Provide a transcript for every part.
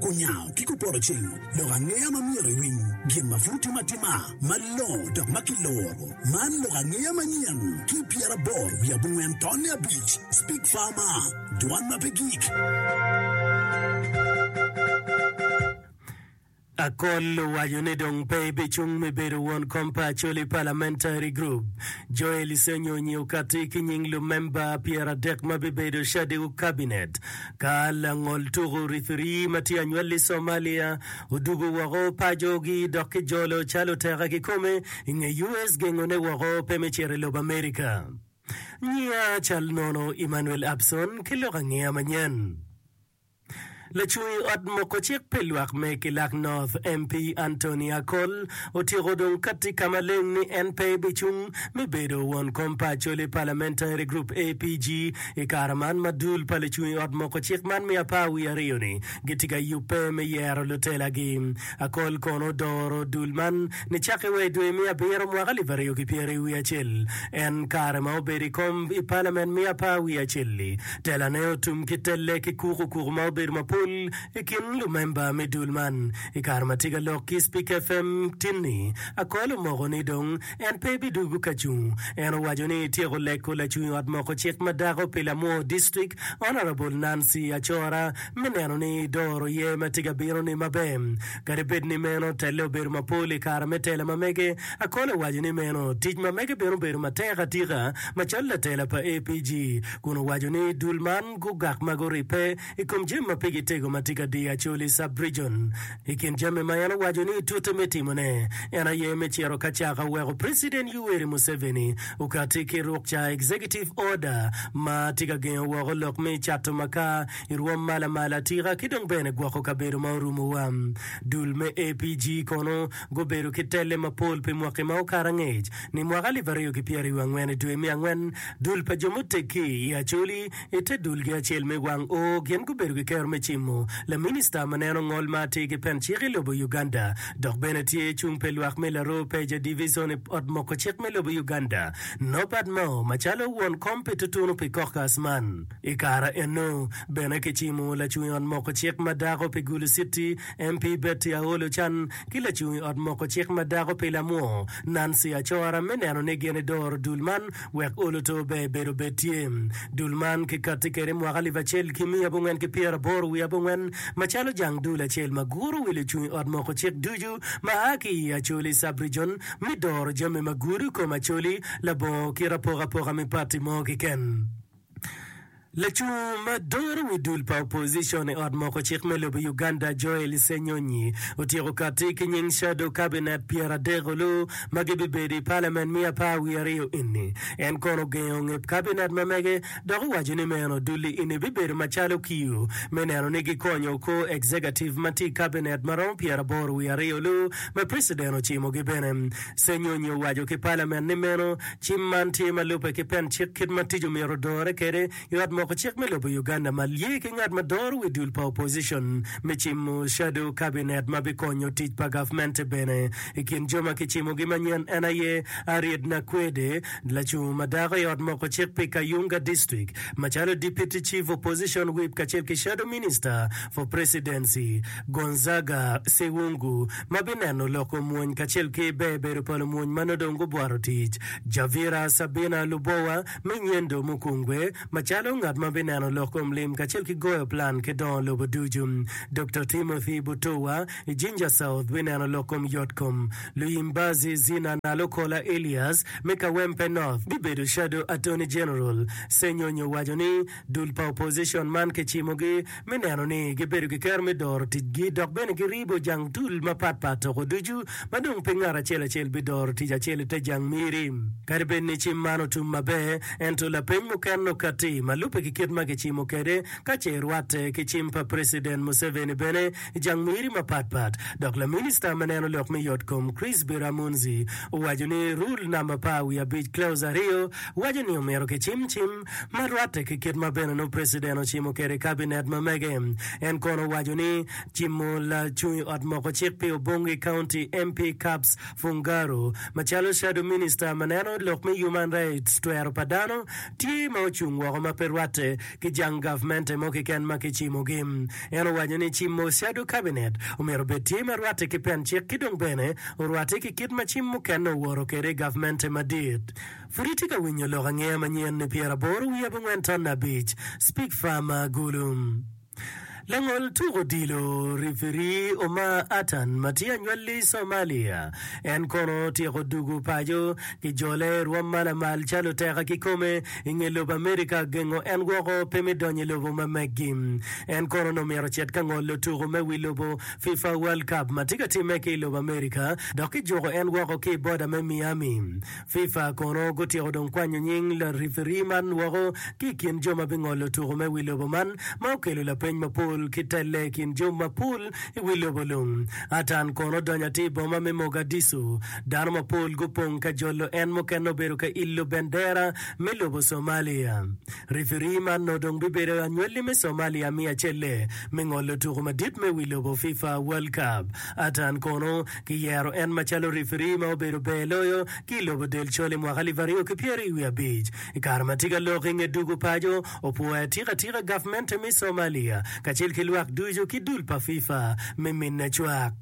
Kunyayo ki kupoto cing, lok angeya ma myero iwiny, gin ma pud timo atima, malongo dok ma kiloro. Man lok angeya manyen ki pyeraboro wiye abongwen tonne abic, Speak Farmer, Dwan ma pe gik. Akol owaco ni dong pe ebicung me bedo won kom pa Acholi Parliamentary Group. Joel Isenyo onyi okatti ki nying lumemba pyeradek ma bibedo cadiko Kabinet ka langol tuku rifirii ma tye anywal i Somalia odugo woko pacogi dok kijolo calo teka kikome i nge US gengone woko pe me cito i lobo Amerika. Nyiya cal nono Emmanuel Abson ki lok angeya manyen. Lacungi ot moko cik pi lwak me kilak North, MP Anthony Akol, otyeko dong katti ka maleng ni en pe bicung me bedo won kom pa Acholi Parliamentary Group, APG, i kare man ma dul pa lucungi ot moko cik man me apar wiye aryo-ni gitye ka yubbe me yero lutelagi. Akol kono odoro dul man Nicakke wa i dwe me abiro mwaka alip aryo ki pyeri wiye acel, en kare ma obedo i kom i palament me apar wiye acel-li, telane otum ki telle ki kuku kuku ma obedo mapol i kin lumemba me dul man. I kare ma tye ka lok ki Spika FM tin-ni, Akol omoko ni dong en pe bidwogo ka cung. En owaco ni tyeko leko lacung ot moko cik ma dako pi Lamwor District, Honourable Nancy Acora, me neno ni doro ye ma tye ka bino-ni maber. Kadi bed ni meno telle obedo mapol i kare me tela ma mege, Akol owaco ni meno tic ma mege bene obedo matek atika macalo latela pa APG, kun owaco ni dul man gugak ma guribbe i kom jami ma pigi tego ma tye ka diyo Acholi Sub-Region. I kin jami ma en owaco ni tute me timone, en aye me cito ka caka weko Preciden Yoweri Museveni okatti ki ruk ca Executive Order ma tye ka gengo woko lok me cato makar I rwom ma lamal atika ki dong bene gwoko kabedo ma orumowa. Dul me APG kono gubedo ki telle mapol pi mwaki ma okato angec. Ni mwaka alip aryo ki pyeraryo angwen i dwe me angwen, dul pa jo muteggi i Acholi i te dulgi acel me wang O gin gubedo ki kero me cimo laminista ma neno ngol ma atir ki pen cik i lobo Uganda dok bene tye cung pe lwak me Laroo Peja Division i ot moko cik me lobo Uganda Norbert Mao macalo won kom pi tutunu pi caucus man. I kare eno bene kicimo lacung i ot moko cik ma dako pi Gulu City, MP Betty Aol Ochan ki lacung i ot moko cik ma dako pi Lamwo, Nancy Acora me neno ni gin idoro dul man wek olo to ber bedo bed tye. Dul man ki kati kede mwaka alip acel ki miya abongwen ki pyera aboro wiye abongwen macalo jang dul acel ma guro wi lucung i ot moko cik ducu ma a ki i Acholi Sub-Region me doro jami ma gudo kom Acholi labongo kit apokapoka me parti mo kiken. Lacung ma doro wi dul pa opozicon i ot moko cik me lobo Uganda Joel Ssenyonyi otyeko katti ki nying shadow cabinet pyera adek olu ma gibibedo i palament me apar wiye aryo eni. En kono ogengo nge cabinet ma mege dok owaco ni meno dul-li eni bibedo macalo kiyo me neno ni gikonyo kor executive ma tye i cabinet ma romo pyera aboro wiye aryo olu ma president ocimogi bene. Ssenyonyi owaco ki palament ni meno Cim man tye ma lubbe ki pen cik kit ma tic omyero odore kwede i ot moko cik me lobo Uganda ma lye ki ngat ma doro wi dul pa opposition me cimo shadow cabinet ma bikonyo tic pa gavmente bene. I kin jo ma kicimogi manyen en aye Ariet Nakwede, lacung ma dako i ot moko cik pi Kayunga District macalo Deputy Chief Opposition Whip kacel ki Shadow Minister for Presidency Gonzaga Sewungu. ma bineno lok omwony kacel ki ber bedo pa lumwony ma nongo dong gubworo tic. Javira Sabina Lubowa me Nyendo Mukungwe, macalo ngat ma bineno lok kom lim kacel ki goyo plan ki dongo lobo ducu. Doktor Timothy Butowa, i Jinja South, bineno lok kom yot kom. Luyimbazi Zina Nalukola Elias, me Kawempe North, bibedo Shadow Attorney General. Senyonyo owaco ni, Dul pa opozicon man kicimogi me neno ni gibedo ki kero me doro ticgi dok bene giribo jang dul mapat pat toko ducu ma dong pe ngat acel acel bidoro tic acel ite jang miri. Kadi bed ni cim man otum maber, ento lapeny mukene okatti ma lubbe ki kit ma kicimo kwede ka ce irwatte ki cim pa President Museveni bene i jang miri mapat pat. Dok laminista me neno lok me yot kom Chris Biramunzi owaco ni rule namba par wiye abic clause aryo waco ni omyero kicim cim ma rwatte ki kit ma bene nongo preciden ocimo kwede kabinet ma mege. En kono owaco ni cimo lacung i ot moko cik pi Obongi County MP Cups Fungaro macalo shadow minister ma neno lok me human rights twero pa dano tye ma ocung woko ma pe rwatte ki jang gavmente mo kiken ma ki cimo gi. En owaco ni cimo shadow kabinet omyero obed tye ma rwatte ki pen cik ki dong bene orwatte ki kit ma cim mukene owoto kwede i gavmente madit. Pud itye ka winyo lok angeya manyen ni pyera aboro wiye abongwen ton abic, Speak Farmer Agulu. Langol tuk odilo, rifiri, Omar Atan ma tye anywalli Somalia, en kono otyeko dugu paco ki jole i rwom ma lamal calo teka kikome i nge lobo Amerika gengo en woko pe me donyo i lobo ma meggi. En kono onongo myero ocit ka ngolo tuku me wi lobo FIFA World Cup ma tye ka timme ki i lobo Amerika dok kijuko en woko ki i boda me Miami Fifa kono gutyeko dong kwanyo nying larifiri man woko ki i kin jo ma bingolo tuko me wi lobo man, ma okelo lapeny mapol ki telle i kin jo mapol i wi lobo lung. Atan kono odonyo atir i boma me Mogadishu. Dano mapol gupong ka jolo en, mukene obedo ka ilo bendera me lobo Somalia. Rifiri man nongo dong bibedo anywali me Somalia miya celle me ngolo tuko madit me wi lobo Fifa World Cup. Atan kono Kiyero en macalo rifiri ma obedo ber loyo ki i lobo del col i mwaka alip aryo ki pyeri wiye abic. I kare ma tye ka lok i nge dugo paco, opwoyo atika tika gavmente me Somalia kacel ki lwak ducu ki dul pa FIFA me minne cwak.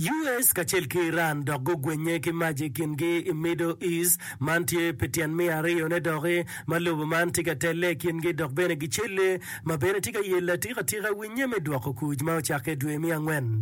US kacel ki Iran dok gugwennye ki mac i kingi i Middle East. Man tye pi tyen me ariyone doki ma lobo man tye ka telle i kingi dok bene gicelle ma bene tye ka yelo atika tika winnye me dwoko kuc ma ocakke dwe me angwen.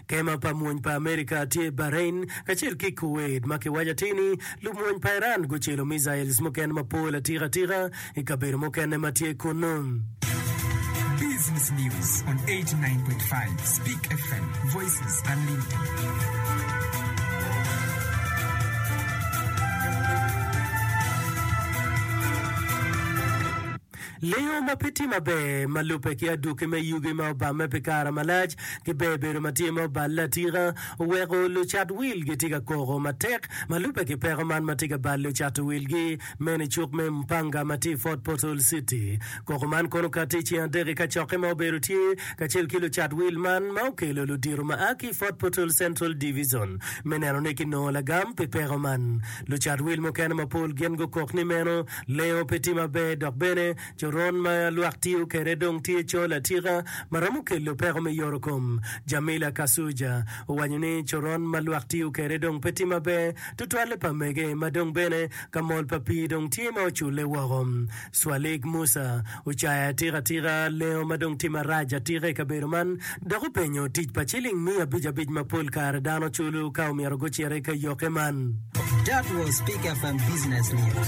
Kema pa mony pa Amerika tye i Bahrain kacel ki i Kuwait ma kiwaco atir ni lumony pa Iran gucelo missiles mukene mapol atika atika i kabedo mukene ma tye kunnu. Business News on 89.5 Speak FM, Voices Unlimited. Lengo ma pe tye maber ma lubbe ki adwoki me yugi ma obamme pi kare malac ki bebedo ma tye ma oballe atika oweko lucat wil gitye ka koko matek ma lubbe ki peko man ma tye ka balo lucato wilgi meno i cuk me Mpanga ma tye i Fort Portal City. Koko man kono okati i ceng adek i kacokke ma obedo tye kacel ki lucat wil man ma okelo ludito ma a ki i Fort Portal Central Division me neno ni kinongo lagam pi peko man. Lucat wil mukene mapol gin gukok ni meno lengo pe tye maber dok bene coron ma lwak tiyo kwede dong tye col atika ma romo kelo peko me yoro kom. Jamila Kasuja owaco ni coron ma lwak tiyo kwede dong pe tye maber tutwalle pa mege ma dong bene ka mol pa pii dong tye ma oculle woko. Cwalik Musa ocayo atika atika lengo ma dong tye marac atika i kabedo man dok openyo tic pa ciling miya abic abic ma pol kare dano culo ka omyero gucit i kayokke man. That was Pick FM Business News.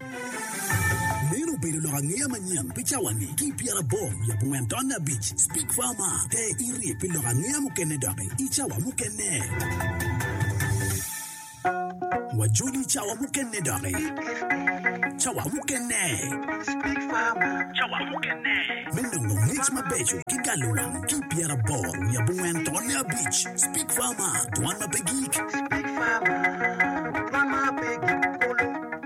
Meno obedo lok angeya manyen pi cawani ki i pyerabong i abongwen taun abic. Speak Farmer, Pe irye pi lok angeya mukene doki i cawa mukene. Wajoli i cawa mukene doki. Cawa mukene. Speak Farmer, Cawa mukene. Me nongo ngec mabeco ki galo wang ki i pyeraboro wiye abongwen taun abic. Speak Farmer, Dwan ma pe gik. Speak Farmer, Dwan ma pe gik kulu.